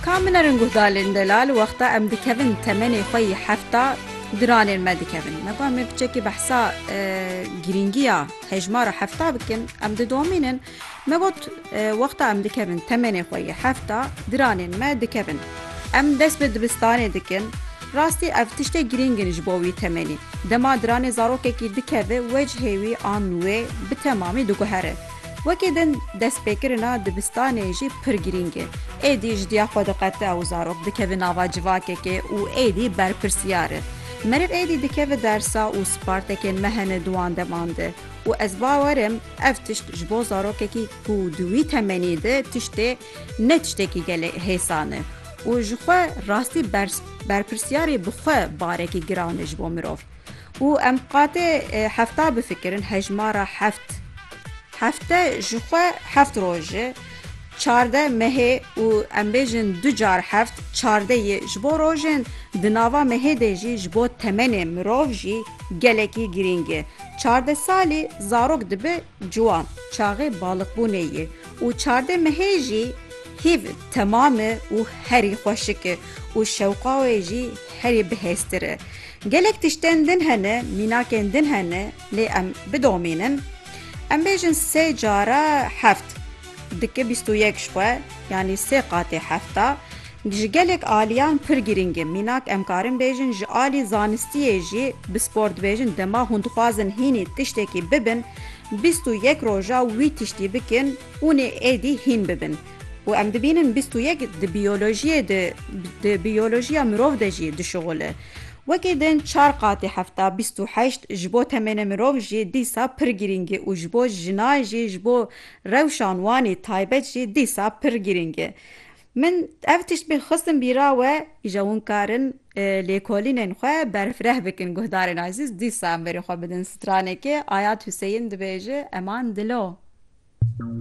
Ka min erin guhdalên delal wexta em dikevin temenê xwe yî hefta diranên me dikevin. Me got me piçekî behsa girîngiya hejmara hefta bikin em didomînin. Me got wexta em dikevin temenê xwe yî hefta diranên me dikevin. Em dest bi dibistanê dikin. Rastî ev tiştê girîng in ji bo wî temenî. Dema diranê zarokekî dikeve wecihê wî an wê bi temamî diguhere. Wekî din destpêkirina dibistanê jî pir girîng e. Êdî ji diya xwe diqete û zarok dikeve nava civakekê û êdî berpirsiyar e. Meriv êdî dikeve dersa û spartekên me hene di wan deman de û ez bawer im ev tişt ji bo zarokekî ku di wî temenî de tiştê ne tiştekî gelê hêsan e û ji xwe rastî berpirsiyarî bi xwe barekî giran e ji bo mirov. Û em qatê hefta bifikirin, hejmara heft. Hefte ji xwe heft roj e, çardeh mehê û em bêjin du car heft, çardeh ye. Ji bo rojên di nava mehê de jî ji bo temenê mirov jî gelekî girîng e. Çardeh salî zarok dibe ciwan, çaxê baliqbûnê ye û çardeh mehê jî hîv temam e û herî xweşik e û şewqa wê jî herî bihêztir e. Gelek tiştên din hene, mînakên din hene lê em bidomînin. Em bêjin sê cara heft dike bîst û yek ji xwe yanî sê qatê hefta ji gelek aliyan pir girîng e. Mînak em karin bêjin ji alî zanistiyê jî bi spor dibêjin dema hûn dixwazin hînî tiştekî bibin bîst û yek roja wî tiştî bikin, Hûn ê êdî hîn bibin û em dibînin bîst û yek di biyolojiyê de di biyolojiya mirov de jî dişuxul e. Wekî din çar qatî hefta bîst û heşt ji bo temenê mirov jî dîsa pir girîng e û ji bo jinan jî ji bo rewşan wanî taybet jî dîsa pir girîng e. Min ev tişt bê xistin bîra we îja hûn karin lêkolînên xwe berfireh bikin guhdarên azîz dîsa em verê xwe bidin stranekê Ayat Huseyîn dibêje eman dilo.